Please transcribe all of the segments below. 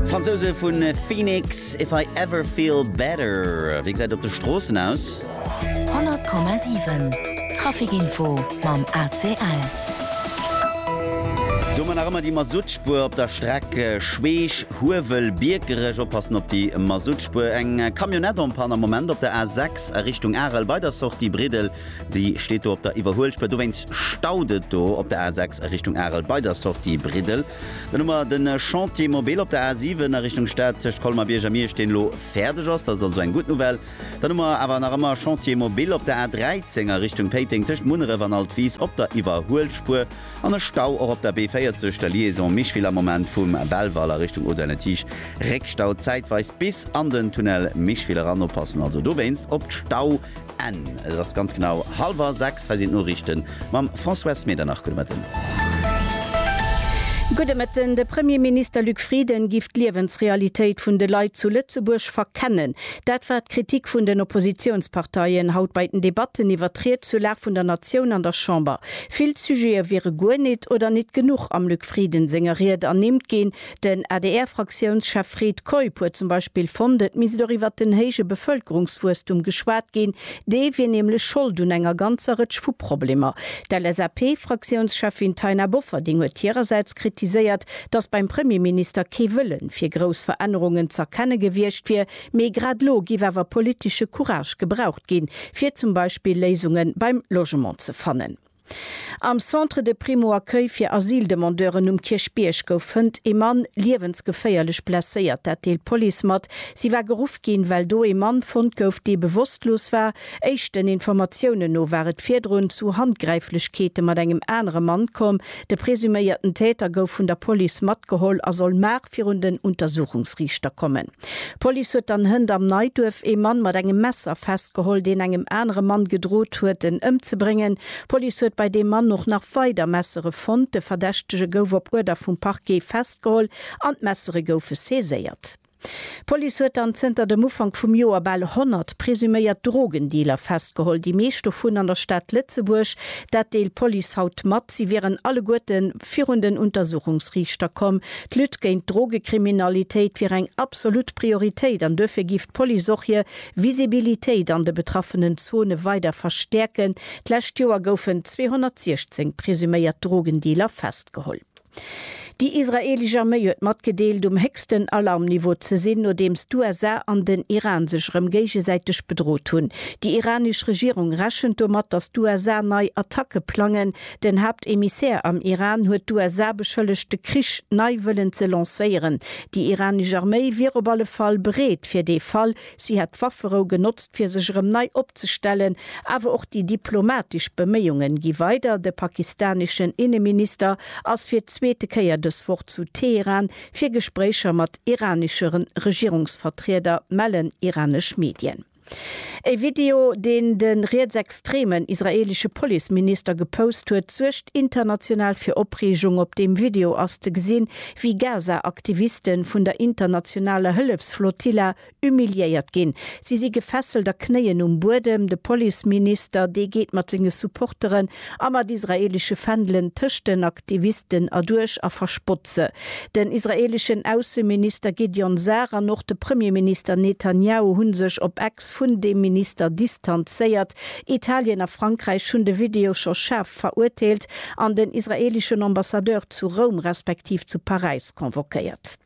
D'Fransouse vu Phoenix, If I Ever Feel Better, wéi gesäit et op de Stroossen aus? 100,7 Trafic-Info mam ACL. Domat nach ëmmer déi Masuttspuer op der Streck Schweech, Huewel, Biekerech. Oppassen op déi Masuttspuer. Eng Camionnette en panne am Moment op der A6 a Richtung Arel bei der Sortie Briddel. Déi steet do op der Iwwerhuelspuer. Dowéinst staut et do op der A6 a Richtung Arel bei der Sortie Briddel. Dann hu mer de Chantier mobile op der A7 a Richtung Stad tëscht Colmar-Bierg a Miersch, deen elo fäerdeg ass. Dat ass also eng gutt Nouvelle. Dann hu mer awer nach ëmmer Chantier mobile op der A13 a Richtung Péiteng tëscht Munneref an Altwis op der Iwwerhuelspuer an e Stau och op der B40, der Liaison Micheville am Moment vum Belval a Richtung Audun-le-Tiche. Réckstau zäitweis bis an den Tunnel Micheville eran. Oppassen also dowéinst op d'Stau. Enn. Et ass ganz genau halwer 6. Hei sinn d'Noriichten mam Françoise Medernach. Gudde Mëtten. Gudde Mëtten. De Premierminister Luc Frieden giff d'Liewensrealitéit vun de Leit zu Lëtzebuerg verkennen. Dat war d'Kritik vun den Oppositiounsparteien haut bei den Debatten iwwer d'Ried zur Lag vun der Natioun an der Chamber. Vill Sujete wiere guer nit oder nit genuch am Luc Frieden senger Ried ernimmt ginn. Den ADR-Fraktiounschef Fred Keup huet zum Beispill fonnt, et misst och iwwert den héije Bevëlkerungswuesstum geschwat ginn. Dee wier nämlech Schold un enger ganzer Rëtsch vu Problemer. D'LSAP-Fraktiounscheffin Taina Bofferding huet hirersäits kritiséiert, datt beim Premierminister kee Wëlle fir grouss Verännerungen z'erkenne gewiescht wier, mee grad elo géif awer politesche Courage gebraucht ginn, fir zum Beispill Léisunge beim Logement ze fannen. Am Centre de Primo-Accueil fir Asyldemandeuren um Kierchbierg gouf fënnt ee Mann liewensgeféierlech blesséiert. Dat deelt d'Police mat. Si war geruff ginn, well do ee Mann fonnt gouf, dee bewosstlos war. Éischten Informatiounen no war et virdrun zu Handgräiflechkeete mat engem anere Mann komm. De presuméierten Täter gouf vun der Police matgeholl a soll virun den Untersuchungsriichter kommen. D'Police huet dann Hënt am Neiduerf ee Mann mat engem Messer festgeholl, deen engem anere Mann gedrot huet, en ëmzebréngen. D'Police huet bei deem Mann och nach weider Messere fonnt. De Verdächtege gouf op Uerder vum Parquet festgeholl an d'Messere goufe saiséiert. D'Police huet dann zënter dem Ufank vum Joer bal 100 presuméiert Drogendealer festgeholl, déi meescht dovun an der Stad Lëtzebuerg. Dat deelt d'Police haut mat. Si wieren alleguerten virun den Untersuchungsriichter komm. D'Lutte géint d'Drogekriminalitéit wier eng absolut Prioritéit an duerfir géif d'Police och hir Visibilitéit an de betraffenen Zone weider verstäerken. D'lescht Joer goufen 216 presuméiert Drogendealer festgeholl. Déi israeelesch Arméi huet matgedeelt, um héchsten Alarmniveau ze sinn, nodeems d'USA an den Iran sech erëm géigesäiteg bedrot hunn. Déi iranesch Regierung rechent domat, datt d'USA nei Attacke plangen. Den Haaptemissär am Iran huet d'USA beschëllegt de Krich nei wëllen ze lancéieren. Déi iranesch Arméi wier op alle Fall bereet fir dee Fall. Si hätt d'Wafferou genotzt fir sech erëm nei opzestellen. Awer och déi diplomatesch Beméiunge gi weider. De pakistaneschen Inneminister ass fir d'zweete Kéier dës Woch zu Teheran fir Gespréicher mat iraneschere Regierungsvertrieder, mellen iranesch Medien. E Video, deen de rietsextremen israeelesche Policeminister gepost huet, suergt international fir Opreegung. Op deem Video ass ze gesinn, wéi Gaza-Aktiviste vun der internationaler Hëllefsflotilla humiliéiert ginn. Si si gefesselt a knéien um Buedem. De Policeminister, dee geet mat senge Supportere a mat israelesche Fändelen tëscht den Aktivisten erduerch a verspott se. Den israeleschen Ausseminister Gideon Sar an och de Premierminister Netanjahu hu sech op Ex vun deem Minister distanzéiert. Italien a Frankräich hunn de Video scho schaarf verurteelt an den israeleschen Ambassadeur zu Roum respektiv zu Paräis convoquéiert.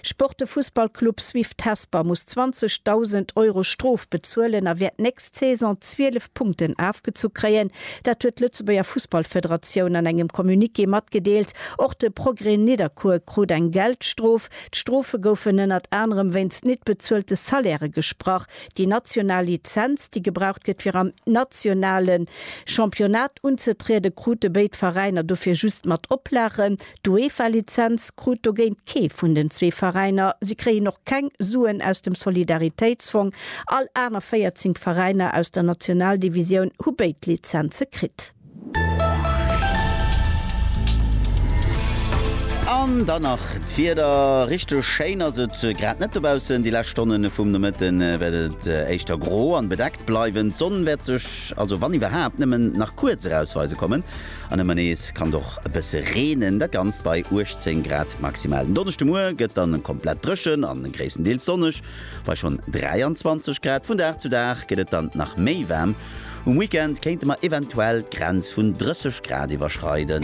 Sport De Fussballclub Swift Hesper muss 20.000 Euro Strof bezuelen a wäert d'nächst Saison 12 Punkten afgezu kréien. Dat huet d'Lëtzebuerger Fussballfederatioun an engem Communiqué matgedeelt. Och de Progrès Nidderkuer krut eng Geldstrof. D'Strofe goufen ënnert anerem wéinst nit bezuelte Salairë gesprach. Déi national Lizenz, déi gebraucht gëtt fir am nationale Championnat unzetrieden, krute béid Veräiner dofir just mat Oplagen. D'UEFA-Lizenz krut dogéint kee vun den zwee Veräiner. Si kréien och keng Suen aus dem Solidaritéitsfong. All aner 14 Veräiner aus der Nationaldivisioun hu béid Lizenze kritt. An dann nach d'Wieder, Richteg schéin ass et grad net dobaussen. Déi lescht Stonne vum Nomëtte wäert et éischter gro an bedeckt bleiwen. D'Sonn wäert sech also, wann iwwerhaapt, nëmmen nach kuerz erausweise kommen. An ëmmer nees kann et och e bësse reenen, dat Ganzt bei 18 Grad maximal. Den Donneschdemuer gëtt dann komplett dréchen a gréisstendeels sonneg bei schonn 23 Grad. Vun Dag zu Dag gëtt et dann nach méi waarm, um Weekend kéinte mer eventuell d'Grenz vun 30 Grad iwwerschreiden.